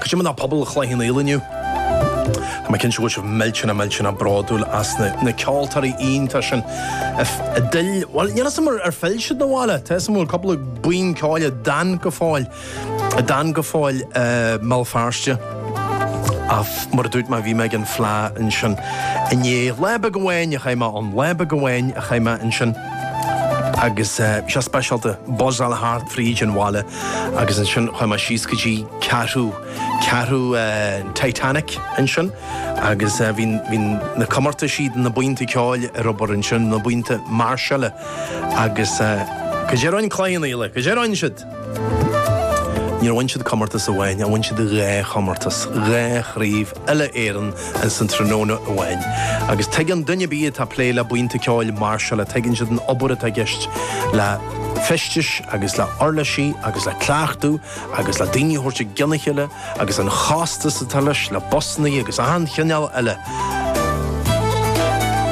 Cad é mar atá pobal Chloich Cheann Fhaola inniu? Tá mé cinnte go bhfuil sibh millteanach millteanach bródúil as na ceoltóirí iontacha sin a d'fhill, bhuel, níl 'fhios agam ar phill siad 'na bhaile, tá 'fhios agam go bhfuil cúpla buíon ceoil a d'fhan go fóill, a d'fhan go fóill i mBéal Feirste. Ach mar a dúirt mé, bhí mé ag an Fleadh ansin inné, lá beag amháin a chaith mé ann, lá beag amháin a chaith mé ansin agus bhí sé speisialta, buzz-áil thart fríd an bhaile. Agus ansin chuaigh mé síos go dtí ceathrú, ceathrú an Titanic ansin agus bhí, bhí na comórtaisí do na buíonta ceoil ar obair ansin, na buíonta mairseála agus cad é a rinne Cloich Cheann Fhaola, cad é a rinne siad. Níor bhain siad comórtas amháin, bhain siad dhá chomórtas, dhá chraobh. uile-Éireann in san tráthnóna amháin. Agus tuigeann duine ar bith atá plé le buíonta ceoil mairseála, tuigeann siad an obair atá i gceist le feistis agus le uirlisí agus le cleachtadh agus le daoine a thabhairt i gcionn a chéile agus an chostas atá leis, le busannaí agus achan chineál eile.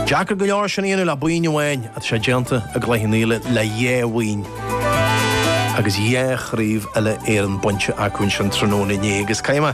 Deacair go leor sin a dhéanamh le buíon amháin ach tá sé déanta i gCloich Cheann Fhaola le dhá bhuíon agus dhá chraobh uile-Éireann bainte acu in san tráthnóna inné agus caithfidh mé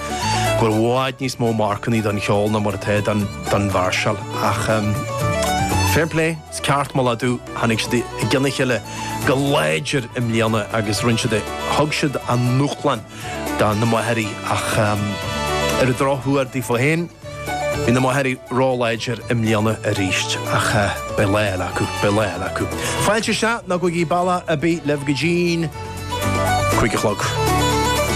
go bhfuil i bhfad níos mó marcannaí don cheol ná mar atá don mhairseáil ach fair play, is ceart moladh dóibh, tháinig siad i gcionn a chéile go láidir i mbliana agus rinne siad é, thug siad a ndúshlán do na Machairí ach ar an drochuair daofa féin, bhí na Machairí róláidir i mbliana arís ach beidh lá eile acu, beidh lá eile acu. Fáilte isteach, ná go dtí bealach ar bith libh go dtín cúig a chlog.